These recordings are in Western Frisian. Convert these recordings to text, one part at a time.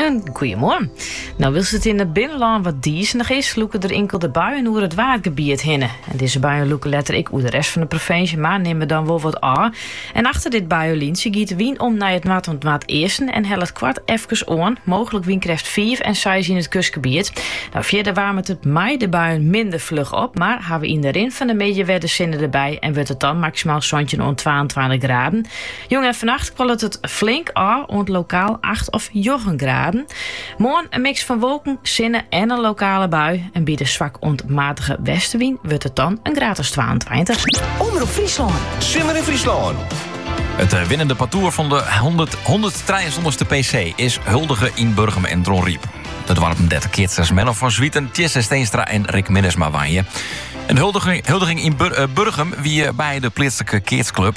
En goeiemoarn. Nou wylst it yn it binnenlân wat dizenich is, lûke der inkelde buien oer it Waadgebiet hinne. En dizze buien lûke letter ek oer de rest fan de provinsje, mar nimme dan wol wat ôf. En achter dit buienlinsje giet de wyn om nei it noard oant noardeasten en hellet koart efkes oan, mooglik wynkrêft fiif à seis yn it kustgebiet. Nou, fierder waarmet it mei de buien minder fluch op, mar hawwe yn de rin fan de middei wer de sinne derby en wurdt it dan maksimaal santjin oant twaentweintich graden. Jûn en fannacht kwollet it flink ôf oant lokaal acht of njoggen graden. Moarn in miks fan wolken, sinne en in lokale bui. En by de swak oant matige westewyn wurdt it dan in graad as twaentweintich. Omrop Fryslân. Simmer yn Fryslân. It winnende partoer fan de hûnderttrijeensantich ste PC is huldige yn Burgum en Dronryp. De doarpen dêr't de keatsters Menno van Zwieten, Tjisse Steenstra en Rick Minnesma wenje. En de huldiging yn Burgum wie by de pleatslike keatsklub.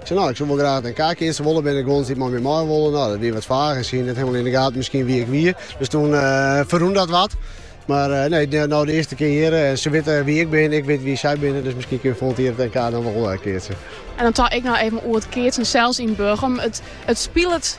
Ik sei, no, ik soe wol graach nei in NK keatsen wolle, binne der guons dy't mei my mei wolle? No, dat wie wat fage, sy hie net hielendal yn de gaten miskien wie ik wie. Dus toen ferrûn dat wat. Mar nee, no de earste kear hjir, sy witte wie ik bin, ik wit wie sy binne, dus miskien kinne we folgjend jier it NK dan wol keatse. En dan tink ik no even oer it keatsen sels yn Burgum. It spilet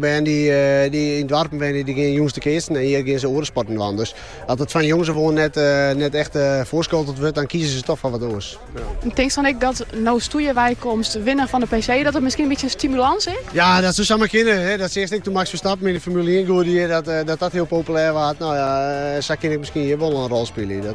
Bern dy't yn doarpen wenje, dy gean jûns te keatsen en hjir gean se oare sporten dwaan. Dus as it fan jonges ôf oan net echt foarskolterd wurdt, dan kieze se toch foar wat oars. Tinkst dan ek dat no'tsto weromkomst as winner fan de PC, dat dat miskien in bytsje in stimulans is? Ja, dat soe samar kinne. Dat seachst ek doe't Max Verstappen yn de Formule ien goed ried, dat dat hiel populêr waard. Nou ja, sa kin ik miskien hjir wol in rol spylje.